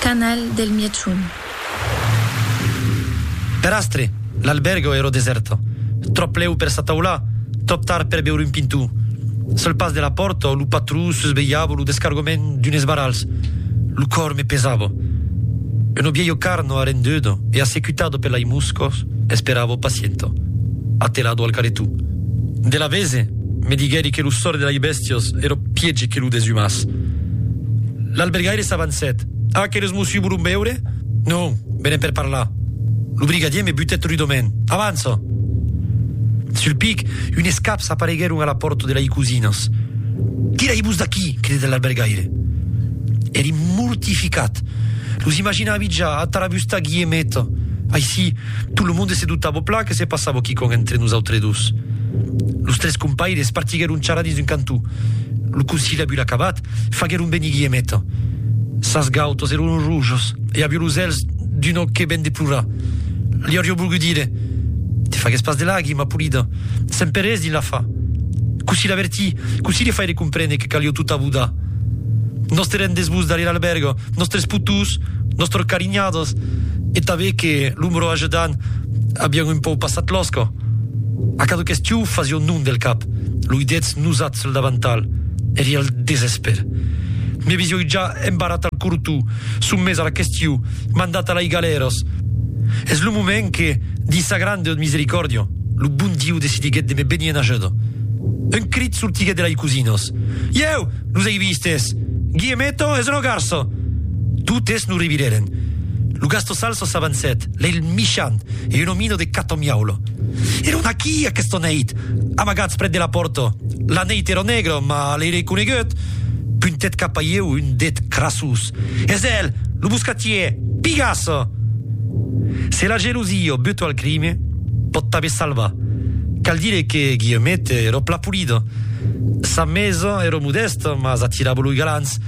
Canal del Mièchon. Per astre, l'albèrga èra desèrta. Tròp lèu per s'ataular, tròp tard per veure un pintor. Sul pas de la pòrta, lo patró susvelhava lo descargament d'unes barrals. Lo còr me pesava. Una vièlha carna arrenduda e assecutada per lai moscas esperava pacienta, atelada al caretó. De l'avese, me diguèri que lo sòrt de lai bèstias Sios, ero piègi que lo desumàs. L'albergaire s'avancèt. A, que los mossi volon veure? Non, venen per parlar. Lo brigadier me butèt rudament. Avança! Sul pic, unes caps apareguèron a la pòrta de lei cosinas. Tirai-vos d'aquí! cridèt l'albergaire. Èri mortificat. Los imaginàvi ja a Tarabustà Guiemeta. Aicí, Tot lo monde se dutava plan que se passava quicòm entre nosautres dos. Los tres compaires partiguèron charrar dins un cantó. Lo conciliabul acabat, faguèron venir Guillemeta. Sas gautas èron rojas e aviá los èlhs d'un òc que ven de plorar. Li auriá volgut dire, Te fagues pas de lagrima, polida, semper es dins l'afa. Cossí l'avertir, cossí li faire comprene que calió tot abodar. Nos te rendés-vos darrèr l'albèrga. nòstres putús, nòstres carinhadas e tanben que lo mro ajedan avián un pauc passat l'òsca. A cada question fasión non del cap, lo idètz nosat sul davantal, èri al desespèr. Me visioi ja embarrat al cortó, sommés a la question, mandat a lai galèras. Es lo moment que, dins sa grande misericòrdia, lo bon Diu decidiguèt de me benir en ajuda. Un crit sortiguèt de lai cosinas, Ieu! Los ei vistes. Guillemeto es lo garço! Totes lo revirèren. Lo gasto salso s'avancèt, lei el michant e un omino de cato miaula. Èron aquí aquesta neit, amagats prèt de la pòrta. La neit èra negra, mas lei reconeguèt. Puntèt cap a ieu un det crasós. Es el, lo buscatier! Pigasse! Se la gelosia o buto al crime pòt tanben salvar, cal dire que Guillemette èra plan polida. Sa maison èra modèsta, mas atirava los galants,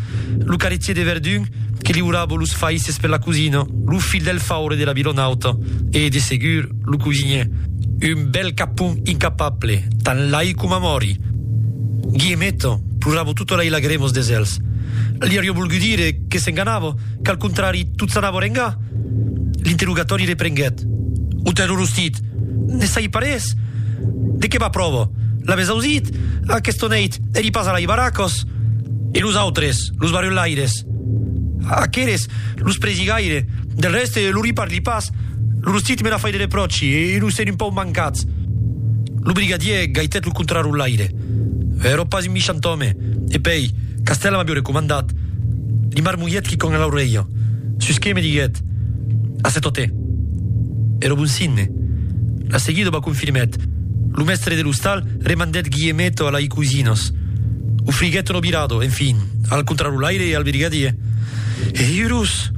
lo carretier de Verdun que liurava los faisses per la cosina, lo filh del faure de la Vilonauta e, de segur, Lo cosinier, un bèl capon incapable, tan lai coma mòri! Guiemeto plorava tota lai lagremos de zèls. Li aurió volgut dire que s'enganava, qu'al contrari tot s'anava rengar. L'interrogatòri reprenguèt. Ont es lo rostit? Ne sai pas res! De qué va pròva? L'avètz ausit? Aquesta nèit èri pas a lai Barracos? E los autres, los barrelaires? Aqueles, los presigaires, Del rèste, lo riparli pas. Lo rostit me la fai de repròchi e lo sèn un pauc mancat. Lo brigadièr gaitèt lo contrarotlaire. Èrò pas un michant òme, e pèi, Castèla m'avió recomandat. Li marmolhèt quicòm a l'aurelha, sus que me diguèt, A se totè. Èrò bon signe. La seguida ba confirmèt. Lo mèstre de l'ostal remandèt Guillemeto a lai cosinas. Ofriguèt un obirado, enfin, al contrarotlaire e al brigadièr. E iurus!